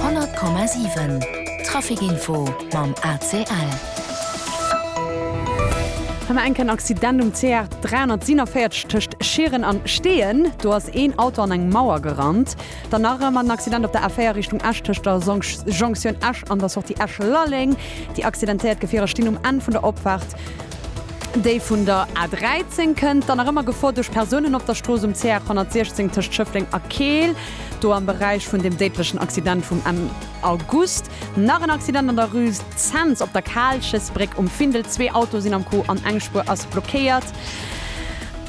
100,7 Trafikinfo mam ACL. Hei mar enken Accident um CR 347 tëscht Schieren an Steeën. Do ass een Auto an eng Mauer gerannt. Dann nach ëmmer en Accident op der A4 Richtung Esch tëscht der Jonction Esch an der Sortie Esch-Lalleng. Déi accidentéiert Gefierer stinn um Enn vun der Opfaart. Déi vun der A 13 kënnt dann nach ëmmer Gefor duerch Persounen op der Strooss um CH 116 tëscht Schëffleng a Keel, do am Beräich vun dem déidlechen Accident vum Enn August. Nach en Accident an der Rue Zens op der Kaalchesbréck um Findel, zwee Autoe sinn am Coup an eng Spuer ass blockéiert.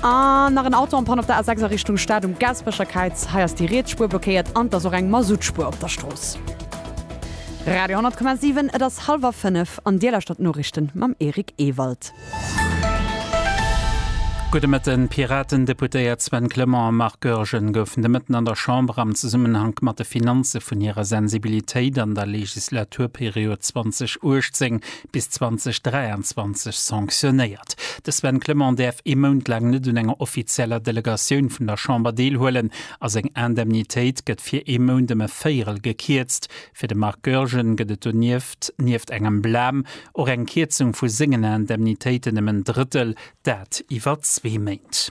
An nach en Auto en panne op der A 6 a Richtung Stad um Gaasperecher Kräiz, hei ass déi riets Spuer blockéiert an et ass och eng Masuttspuer op der Strooss. Radio 10,7 Et ass hallwer fënnef. An Dir lauschtert d'Noriichten mam Eric Ewald. Gudde Mëtten. D'Piraten-Deputéiert Sven Clement a Marc Goergen goufen de Mëtten an der Chamber am Zesummenhank mat de Finanze vun hirer Sensibilitéit an der Legislaturperiod 2018 bis 2023 sanctionéiert. De Sven Clement däerf ee Mount laang net un enger offizieller Delegatioun vun der Chamber deelhuelen a seng Indemnitéit gëtt fir ee Mount ëm e Véierel gekierzt, Fir de Marc Goergen gëtt et donieft, nieft engem Blam, och eng Kierzung vu sengen Indemnitéiten ëm en Drëttel, dat iwwer zwee Méint.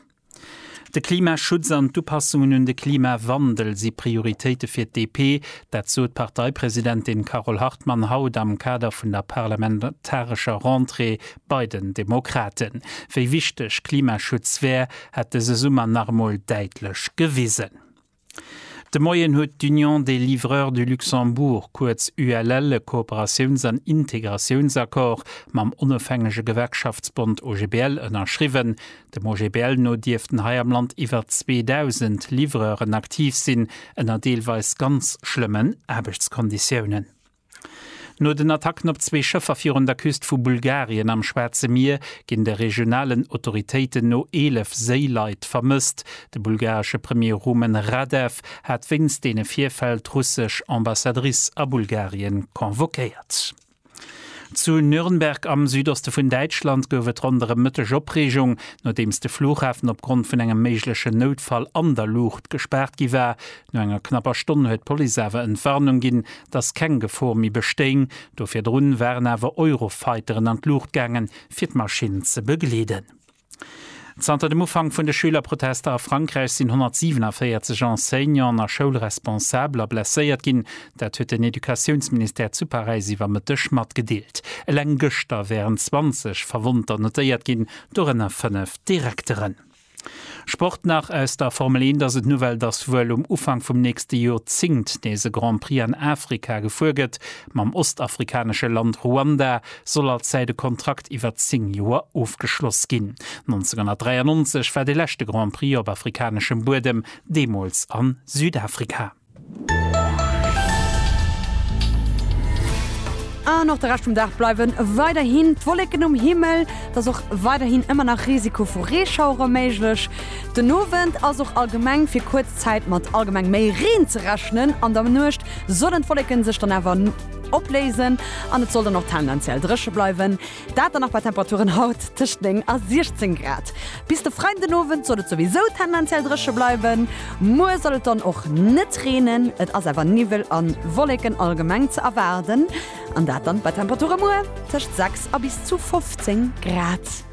De Klimaschutz an d'Upassungen un de Klimawandel si Prioritéite fir d'DP. Dat sot d'Parteipresidentin Carole Hartmann haut am Kader vun der parlamentarescher Rentrée bei den Demokraten. Wéi wichteg Klimaschutz wär, hätt dëse Summer nach emol däitlech gewisen. De Moien huet d'Union des Livreurs du Luxembourg, kuerz ULL, e Kooperatiouns an Integratiounsaccord mam onofhängege Gewerkschaftsbond OGBL ënnerschriwwen. Dem OGBL no dierften hei am Land iwwer 2.000 Livreuren aktiv sinn, ënner deelweis ganz schlëmmen Aarbechtskonditiounen. No den Attacken op zwee Schëffer virun der Küst vu Bulgarien am Schwaarze Mier ginn de regionalen Autoritéiten no 11 Séileit vermësst. De bulgaresche Premier Rumen Radev hat wéinst deene Virfäll d'russesch Ambassadrice a Bulgarien convoquéiert. Zu Nürnberg am Südoste vun Däitschland gouf et ronderëm Mëtteg Opreegung, nodeems de Flughafen opgrond vun engem méiglechen Noutfall an der Luucht gespaart gi war. No enger knapper Stonn huet d'Police awer Entwarnung ginn, dass keng Gefor méi bestéing. Do virdrun waren awer Eurofighteren an d'Luucht gaangen, fir d'Maschinn ze begleeden. Zanter dem Ufank vun de Schülerprotester a Frankräich sinn 147 Enseignanten a Schoulresponsabler blesséiert ginn. Dat huet den Educatiounsministère zu Paräis iwwer Mëtteg matgedeelt. Eleng gëschter wären 20 Verwonnter notéiert ginn, dorënner fënnef Direkteren. Sport nach aus der Formel 1 ass et d'Nouvelle, dass wuel um Ufank vum nächste Jorzéngt nees e Grand Prix an Afrika gefuer gëtt. Mam ostafrikanesche Land Ruanda soll als Säit e Kontrakt iwwer 10 Joer ofgeschloss ginn. 1993 war de leschte Grand Prix op afrikaneschem Buedem, deemools a Südafrika. An och de Rescht vum Dag bleiwen weiderhin d'Wolleken um Himmel. Et ass och weiderhin ëmmer nach Risiko vu Reeschauere méiglech. Den Owend ass och allgemeng fir kuerz Zäit mat allgemeng méi Reen ze rechnen. An der Nuecht sollen d'Wolleke sech dann awer opléisen an et soll dann och tendenziell dréche bleiwen. Dat dann nach bei Temperaturen haut tëscht 9 a 16 Grad. Bis de Freidenowend soll et souwisou tendenziell dréche bleiwen. Muer soll et dann och net reenen, et ass awer Niwwel a Wolleken allgemeng ze erwaarden an dat dann bei Temperature muer tëscht 6 a bis zu 15 Grad.